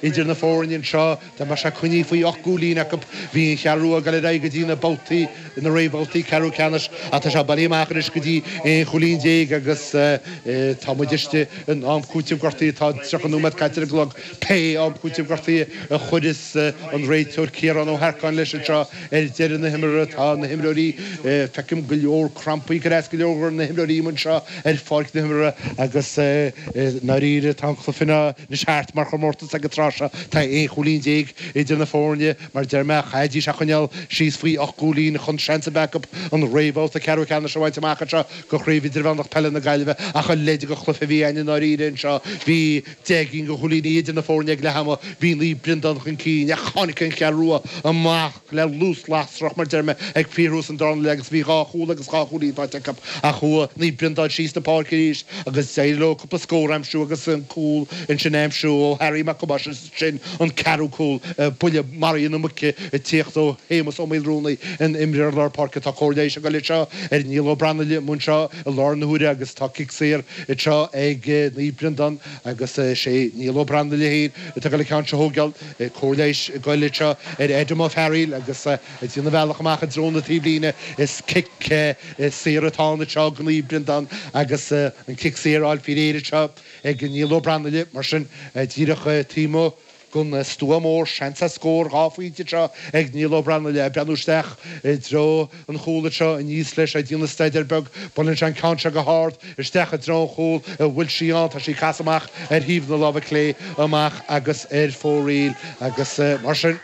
Idir na foirne anseo, dá mbeadh sé coinnithe faoi ocht gcúilín acu, bhí an Cheathrú Rua ag dul ar aghaidh go dtí na babhtaí, na réamhbhabhtaí ceathrú ceannais ach tá sé bailithe amach anois go dtí aon chúilín déag agus tá muid istigh in am cúiteamh gortaithe. Tá tríocha nóiméad caite ar an gclog. Pé am cúiteamh gortaithe a chuireas an réiteoir Ciarán Ó hEarcáin leis anseo ar deireadh na himeartha, tá na himreoirí, feicim go leor crampaí ag cur as do go leor na himreoirí anseo ar pháirc na himeartha agus i ndáiríre tá an cluiche ina. Anois thart mar chomórtas ag an tráth seo tá aon chúilín déag idir na foirne mar deir mé chaithfidís a choinneáil síos faoi ocht gcúilín chun seans a bheith acu an réamhbhabhta ceathrú ceannais a bhaint amach anseo de Chraobh Idirmheánach Peile na Gaillimhe ach a leithéid de chluiche a bhí ann i ndáiríre anseo bhí deich gcinn de chúilíní idir na foirne ag leath ama bhí Naomh Breandán chun cinn ach tháinig an Cheathrú Rua amach le luas lasrach, mar deir mé, ag fíorthús an dara leath agus bhí dhá chúl agus dhá chúilín faighte acu ach chuaigh Naomh Breandán síos na páirce arís agus d'éirigh leo cúpla scór a aimsiú agus an cúl ansin a aimsiú ó Harry Mac Thomáis agus ansin an ceathrú cúl buille maraithe na muice ag tíocht ó Shéamus Ó Maolrúnaí an t-imreoir lár páirce tá cóir leighis ag goil anseo ar Niall Ó Brannaile anseo i lár na huaire agus tá cic saor anseo ag Naomh Breandán agus sé Niall Ó Brannaile fhéin atá ag goil an ceann seo a thógáil cóir leighis ag goil anseo ar Adam Ó Fearaíl agus ag déanamh a bhealach amach i dtreo na taobhlíne. Is cic saor atá ann anseo ag Naomh Breandán agus an cic saor á fháil faoi réir anseo ag Niall Ó Brannaile mar sin díreach taobh amuigh gon stua mór. Seans ar scór dhá phointe anseo ag Niall Ó Brannaile ag breathnú isteach i dtreo an chúl anseo aníos leis ag déanamh staidéir beag, buaileann sé an ceann seo go hard isteach i dtreo an chúl a bhfuil sí ann, tá sí ag casadh amach ar thaobh na láimhe clé amach agus ar fóraoil agus mar sin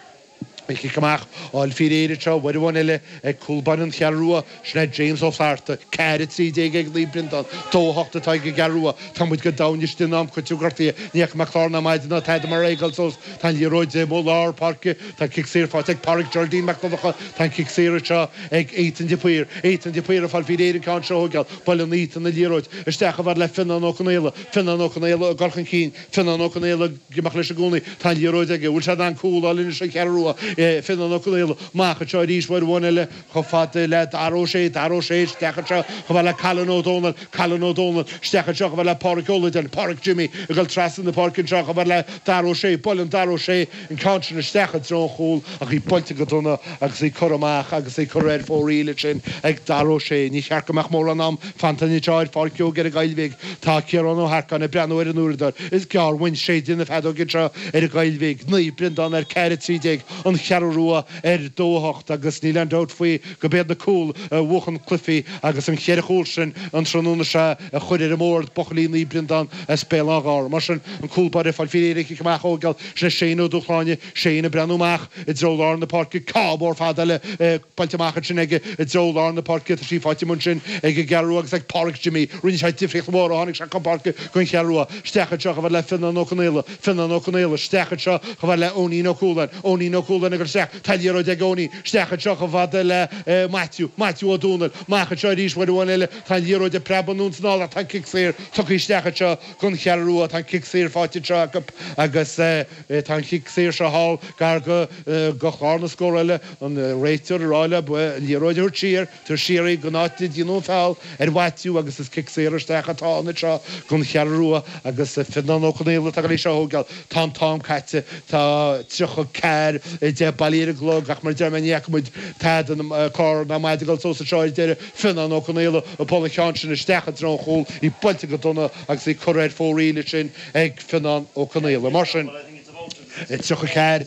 cic amach á fháil faoi réir anseo, uair amháin eile ag cúl báire an Cheathrú Rua, sin é James Ó Flatharta, ceathair trí déag ag Naomh Breandán, dó hocht atá ag an gCeathrú Rua, támuid go domhain istigh in am cúiteamh gortaithe, ní fhaca mé clár ná maide ná tada mar é go fóill fós, Tá an liathróid i dtaobh lár páirce. Tá cic saor faighte ag Páraic Geraldine Mac Donnacha. Tá an cic saor seo ag Étain de Paor. Étain de Paor ag fáil faoi réir an ceann seo a thógáil. Buaileann Étain an liathróid isteach chomh fada le Fionnán Ó Conaola. Fionnán Ó Conaola ag goil chun cinn. Fionnán Ó Conaola ag imeacht leis i gcónaí. Tá an liathróid aige. Bhfuil sé in ann cúl a fháil anois don Cheathrú Rua? Fionnán Ó Conaola amach anseo arís uair amháin eile. Chomh fada le Darragh Ó Sé, Darragh Ó Sé isteach anseo chomh fada le Callan Ó Dónaill, Callan Ó Dónaill isteach anseo chomh fada le Páraic Ó Loideáin, Páraic Jimmy ag dul trasna na páirce anseo chomh fada le Darragh Ó Sé, buaileann Darragh Ó Sé an ceann sin isteach i dtreo an chúl ach í buailte go dona agus í curtha amach agus í curtha ar fóraoil ansin ag Darragh Ó Sé. Ní cheapfainn go mbeadh mórán am fanta anseo ar Pháirc Seoigheach i nGaillimh. Tá Ciarán Ó hEarcáin ag breathnú ar an uaireadóir. Is gearr uainn séideadh na feadóige anseo i nGaillimh. Naomh Breandán ar ceathair trí déag An Cheathrú Rua. ar Domhacht agus níl aon dabht faoi go b'iad na cúil a bhuachann cluichí agus na cheithre chúl sin an tráthnóna seo a chuir ar an mbóthar buachaillí Naomh Breandán as Béal Átha Ghártha. Mar sin an cúl báire ag fáil faoi réir an cic amach a thógáil sin é Shane Ó Dúshláine. Shane ag breathnú amach i dtreo lár na páirce. Ceann mór fada eile buailte amach ansin aige i dtreo lár na páirce. Tá sí faighte amuigh ansin ag an gCeathrú Rua agus ag Páraic Jimmy. Rinne sé difríocht mhór ó tháinig sé chun páirce don Cheathrú Rua. Isteach anseo chomh fada le Fionnán Ó Conaola. Fionnán Ó Conaola, Isteach anseo chomh fada le Eoinín Ó Cualáin. Eoinín Ó Cualáin, Ag dul isteach. Tá liathróid ag Eoinín. Isteach anseo chomh fada le eh Maitiú. Maitiú Ó Domhnaill, Amach anseo arís uair amháin eile. Tá an liathróid ag preabadh anonn is anall ach tá an cic saor tugtha isteach anseo gon Cheathrú Rua. Tá an cic saor faighte anseo acu agus eh tá an cic saor seo thall gar go eh go chlár na scórála. An réiteoir ag rá leo an liathróid a thabhairt siar. Tabhairt siar gon áit ar déanadh an feall ar Mhaitiú agus is cic saor isteach atá ann anseo don Cheathrú Rua agus Fionnán Ó Conaola atá ag dul á thógáil. Tá an t-am caite, tá tríocha ceathair a deich bailithe ar an gclog ach mar a deir mé ní fhaca muid tada clár ná maide ag dul suas anseo ar deireadh. Fionnán Ó Conaola ag bualadh an cheann sin isteach i dtreo an chúil, í buailte go dona agus í curtha ar fóraoil ansin ag Fionnán Ó Conaola. Mar sin. 34,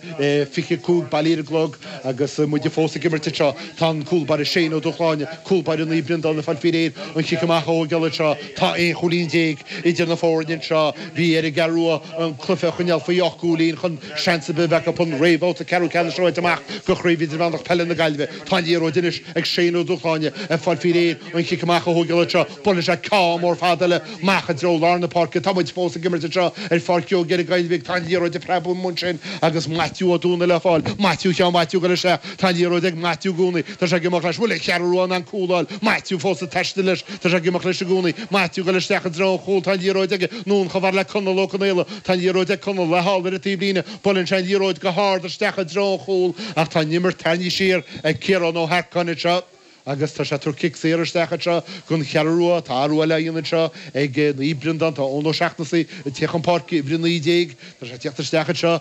25 bailithe ar an gclog agus muid fós ag imirt anseo. Tá an cúl báire Shane Ó Dúshláine, cúl báire Naomh Breandán ag fáil faoi réir an cic amach a thógáil anseo. Tá aon chúilín déag idir na foirne anseo. Bhí ar an gCeathrú Rua an cluiche a choinneáil faoi ocht gcúilín chun seans ar bith a bheith acu an réamhbhabhta ceathrú ceannais a bhaint amach de Chraobh Idirmheánach Peile na Gaillimhe. Tá an liathróid anois ag Shane Ó Dúshláine ag fáil faoi réir an cic amach a thógáil anseo. Buaileann sé ceann mór fada eile amach i dtreo lár na páirce. Tá muid fós ag imirt anseo ar Pháirc Joe Gill i gCoill Bhig. Tá an liathróid ag preabadh amuigh ansin agus Maitiú Ó Domhnaill le fáil. Maitiú Sheáin Mhaitiú ag dul isteach. Tá an liathróid ag Maitiú i gcónaí. Tá sé ag imeacht leis. An bhfuil an Cheathrú Rua in ann cúl a fháil. Maitiú fós ag taisteal leis. Tá sé ag imeacht leis i gcónaí. Maitiú ag dul isteach i dtreo an chúil. Tá an liathróid aige. Anonn chomh fada le Conall Ó Conaola. Tá an liathróid ag Conall. Le fáil ar an taobh líne. Buaileann sé an liathróid go hard isteach i dtreo an chúil ach tá an imirt tarraingthe siar ag Ciarán Ó hEarcáin anseo. Agus tá sé ag tabhairt cic saor isteach anseo gon Cheathrú Rua. Tá athrú eile á dhéanamh anseo ag Naomh Breandán. Tá Eoin Ó Seachnasaigh ag teacht chun páirce uimhir 19. Tá sé ag teacht isteach anseo.